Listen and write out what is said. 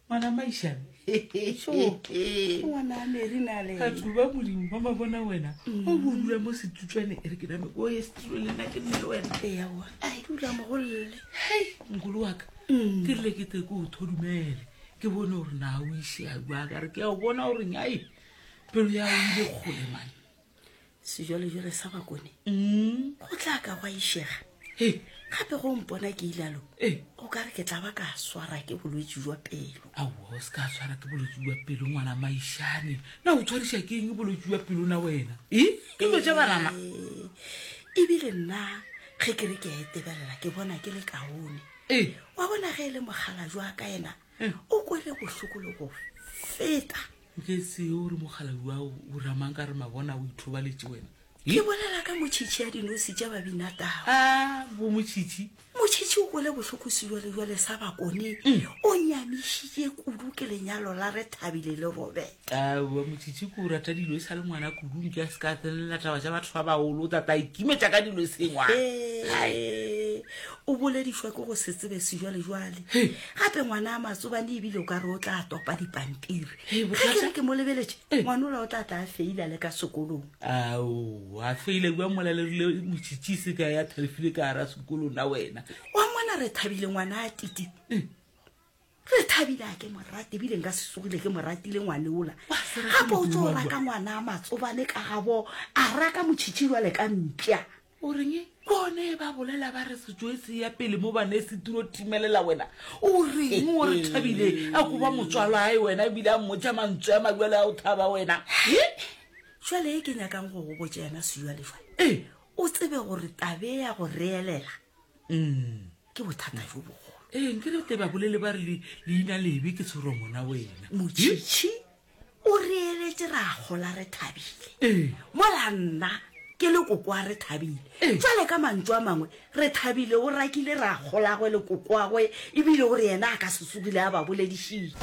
ngwana maišane ngwana meri na le batho ba modimo ba mabona wena o bo dula mo setutswane e re ke name o ye setulo le nna ke nne le wena ewa a dula mogolole hei mogolo wa ka ke rile ke te ke o thodumele ke bone gore na o ise a bua ka re ke a o bona goreng ai pelo ya o ile kgole mane sejwalejwale sa bakone mm. go tla ka gwa išega gape go mpona ke ilalo go ka re ke tla ba ka swara ke bolwetse jwa pelo ao se ka swara ke bolwetse jwa pelo ngwana maišane na o tshwariša ke eng bolwetse jwa pelo na wena e ke lo ja banana ebile nna ge ke re ke a etebelela ke bona ke le kaone wa bona ge e le mogala jwa ka ena o kwele bohloko le go feta O ke se o re mogalabi wa o o ramang ka re mabona o ithobaletše wena. Ke bolela ka motšhitšhi ya dinosi tša babinatau. A bo motšhitšhi. Motšhitšhi o kwele bohloko sejwalejwale sa bakone. Mm. O nyamišitše kudu ke lenyalo la re Thabile le Robert. A bo motšhitšhi ke o rata dilo e sa le ngwana kudu nke a se ka tsenelela taba tša batho ba bagolo o tla tla ikimetša ka dilo e sengwa. Ee. o boledišwa ke go se tsebe sejwalejwale Hey. gape ngwana a matsobane ebile o ka re o tla topa dipampiri Hey, ga bothata. ke re ke mo lebeletše Eh. ngwana ola o tla tla a feila le ka sekolong ao a feile kua molalerile motšhitšise ka ya thalefile ka ara sekolo na wena wa mona re thabile ngwana a titi Eh. re thabile a ke morate ebile nka se sogile ke moratile ngwane ola Wa se rate gape o tlo modimo wa raka ngwana a matsobane ka gabo a raka motšhitšhi jwale ka mpša O reng? Bone ba bolela ba re sejo e se ya pele mo ba ne se tiro timelela wena. O reng o re thabile a go ba motswalwa ae wena ebile a mmotša mantswe a mabjale a o thaba wena. He! Jwale e ke nyakang go go botša yena sejo a lejwale. Ee. O tsebe gore tabe ya go reelela mm. ke bothata jo bogolo. Ee, nkere te ba bolele ba re leina lebe ke tshwero ngwana wena. Motšhitšhi O reeletše ra gola re thabile. Ee. Mola nna ke le kokoa re thabile. Ee. Jwale ka mantšu a mangwe, re thabile o rakile ragolagwe le kokoagwe ebile o re yena a ka se tsogile a ba boledišitše.